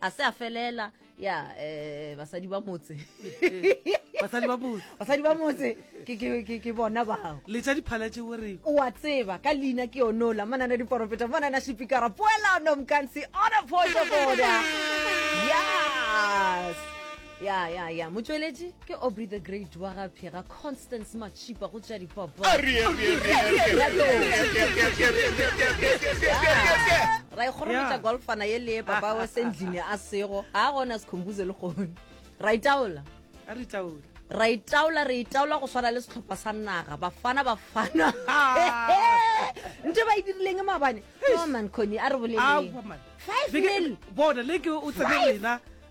a se a felela ya um basadi ba motse basadi ba motse basadi ba motse ke bona bao le tša diphala tše o re o a tseba ka leina ke yonola mana na diporofeta mana na sepikara poelano mkansi ona photo boda yes ya ya ya motšweletši ke aubrey the great wa ga phega constance matšhipa go tša dipopo ra ikgorometša golfana ye le papa wa sendlini a sego ga gona sekhombuze le gone ra itaola ra itaola re itaola go swana le setlhopha sa naga bafana bafana nte ba e dirileng mabane no man coni a re boleleng five mil bona le ke o tsene wena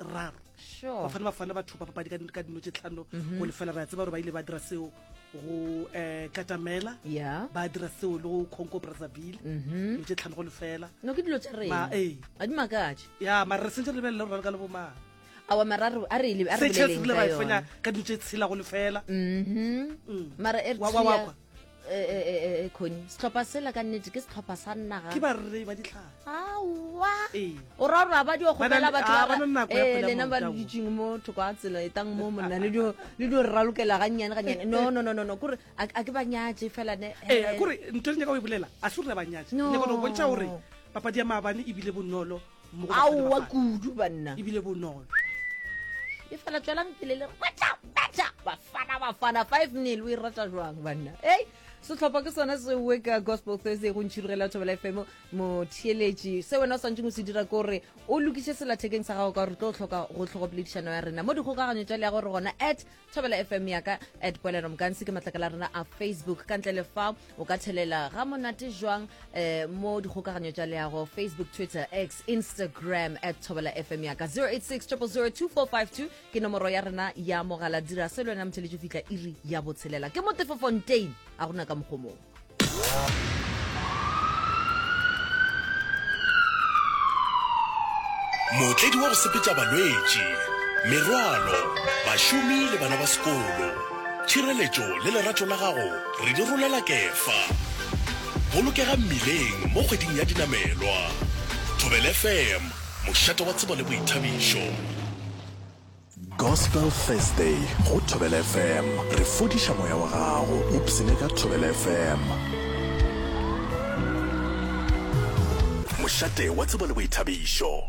raro sure. bafana bafana ba thopa papadi ka dino tše tlhano mhm. go lefela ra tseba gore ba ile ba dira seo go um eh, katamela yeah. ba dira seo le go conco brazzaville mhm. dilo tše tlhano go lefela no ke dilo tša rena ee. a di makatše ya mara re sentse re lebelele gore ka le bomang awa mararo a re le a re le ka dilo tše tshela go lefela mhm. mm. mara e re khoni eh, eh, eh, setlhopha sela ka nnete ke setlhopha sa nnaga ke barre ba ditlhare awa o ra gore ba dio gobela batlolena ba le ditseng mo thoko a tsela e tang mo monna le dio rra lokela gannyane gannyane no no no no kore a ke ba nyatse fela ne kore ntho e le nyaka o e bolela a se gore ba nyatse ne kone go bontšha gore papadi ya maabane ebile bonolo aowa kudu banna ebile bonolo e fela tswelang pele le rata beta bafana bafana five nil o e rata jwang banna ei setlhopha ke sone se we ka gospel thursday go ntšhirigela thobela fm motheeletši se wena o swantšeng o se dira kore o lokiše selathekeng sa gago ka gore tlo tlhoka go tlhogopoledišano ya rena mo dikgokaganyo tša le ya gore gona at thobela fm yaka at poelano mokansi ke matlakala rena a facebook ka ntle le fa o ka thelela ga monate jwang eh, mo dikgokaganyo tša leago facebook twitter x instagram at thobela fm yaka 08600242 ke nomoro ya rena ya mogala dira se le wena motheletši fihla iri ya botshelela ke motefofontein a gona ka mokgomong Mootledi wa go sepetša balwetši, merwalo, bašomi le bana ba sekolo. Tšhireletšo le lerato la gago re di rolela Kefa. Bolokega mmileng mo kgweding ya dinamelwa. Thobela FM, mošate wa tsebo le boithabišo. Gospel Thursday go Thobela FM. Re fodiša moya wa gago. Upsene ka Thobela FM. Mošate wa tsebo le boithabišo.